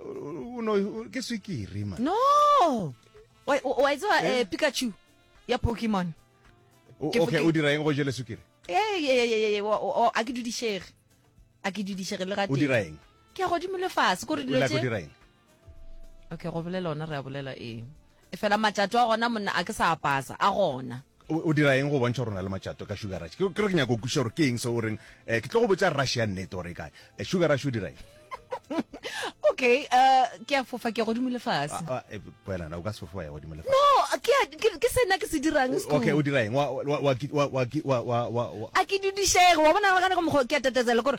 o no ke swikiri man no wa wa itse wa eh, eh? pikachu ya pokemon okay o dira eng go jele swikiri eh ye ye ye ye wa a ke dudishege a ke dudishege le ga o dira eng ke a godimo le fase ko re dilo tse okay go bolela ona re a bolela eng Efela matšato a gona, monna, a ke sa a pasa, a gona. O, o dira eng go bontšha gore o na le matšato ka Sugar Rush? Ke, ke re ke nyaka go kwešiša gore ke eng seo o reng, eh, ke tlo go botša Rush ya nnete gore e kae. Eh, Sugar Rush o dira eng? Okay, eh, ke a fofa, ke ya godimo le fase. Ah, ah, eh, wena na o ka se fofe wa ya godimo le fase? No, ke a, ke, ke se nna ke se dirang, Skhumba. Okay, o dira eng? Wa, wa, wa, ki- wa, wa, ki- wa, wa, wa, wa. A ke dudišege, wa bona, nagana ka mokgwa o ke a tateza le kore,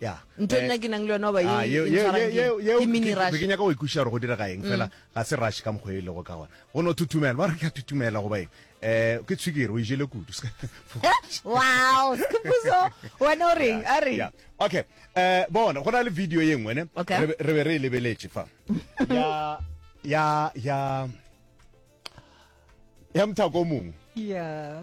ya ntho eh, nna ke nang le yona ba e ah, ke mini rush ke nyaka go ikuša gore go direga eng fela mm. ga se rush ka mokgwa e lego ka gona go no thutumela ba re ke a thutumela go baeng um ke tshwikere o ijele kudu wow sepuso wena o reng a re okay um bona go na le video ye nngwe ne re be re e lebeletse fa ya ya ya mthako mongwe yeah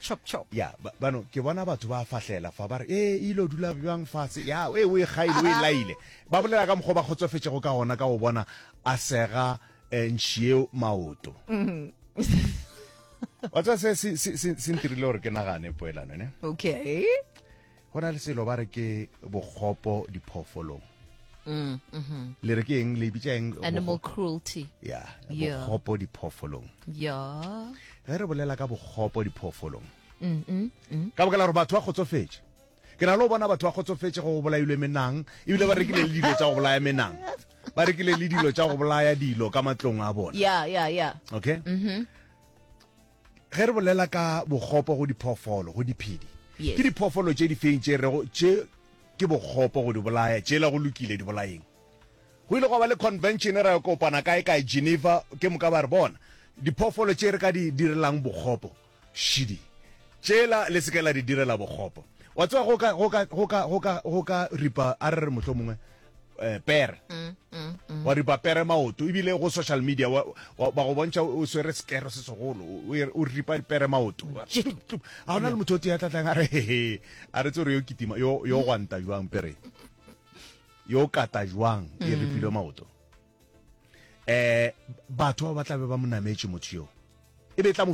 chop chop ya ba- bano ke bona batho ba fahlela fa ba re ee e ile o dula bjang fatshe ya e o e gaile o e Aha. laile ba bolela ka mokgwa o ba kgotsofetšego ka gona ka go bona a sega um ntšhieo maoto wa tseba se se- se- se- se ntirile gore ke nagane poelano ne okay go na le selo ba re ke bokgopo diphoofolong mm, mm-hmm. le re ke eng le bitsa eng animal cruelty ya bokgopo diphoofolong ya ge re bolela ka bokgopo diphoofolong mm-hmm, mm. ka bokela gore batho ba kgotsofetse ke na le go bona batho ba kgotsofetse go bolailwe menang ebile ba rekile le dilo tsa go bolaya menang ba rekile le dilo tsa go bolaya dilo ka matlong a bona yeah yeah yeah okay mm -hmm. Ge re bolela ka bokgopo go diphoofolo, go diphedi, ke diphoofolo tše difeng tše rego tše ke bokgopo go di bolaya, tšela go lokile, di bolaeng? Go ile gwa ba le convention, ra yo kopana kae-kae Geneva, ke moka ba re bona diphoofolo tše re ka di direlang bokgopo, šidi, tšela le se ke la di direla bokgopo. Wa tseba go ka, go ka, go ka, go ka, go ka ripa, a re re mohlomongwe eh, pere mm, mm, mm. wa ripa pere maoto ebile go social media wa go bontšha o swere sekero se segolo o ripa pere maoto ga gona le motho o tee tlatlang a re hehe a re tse gore yo kitima yo gwanta jwang pere yo kata jwang e ripilwe maoto um batho ba ba tlabe ba mo nametse motho yoo e be tla mo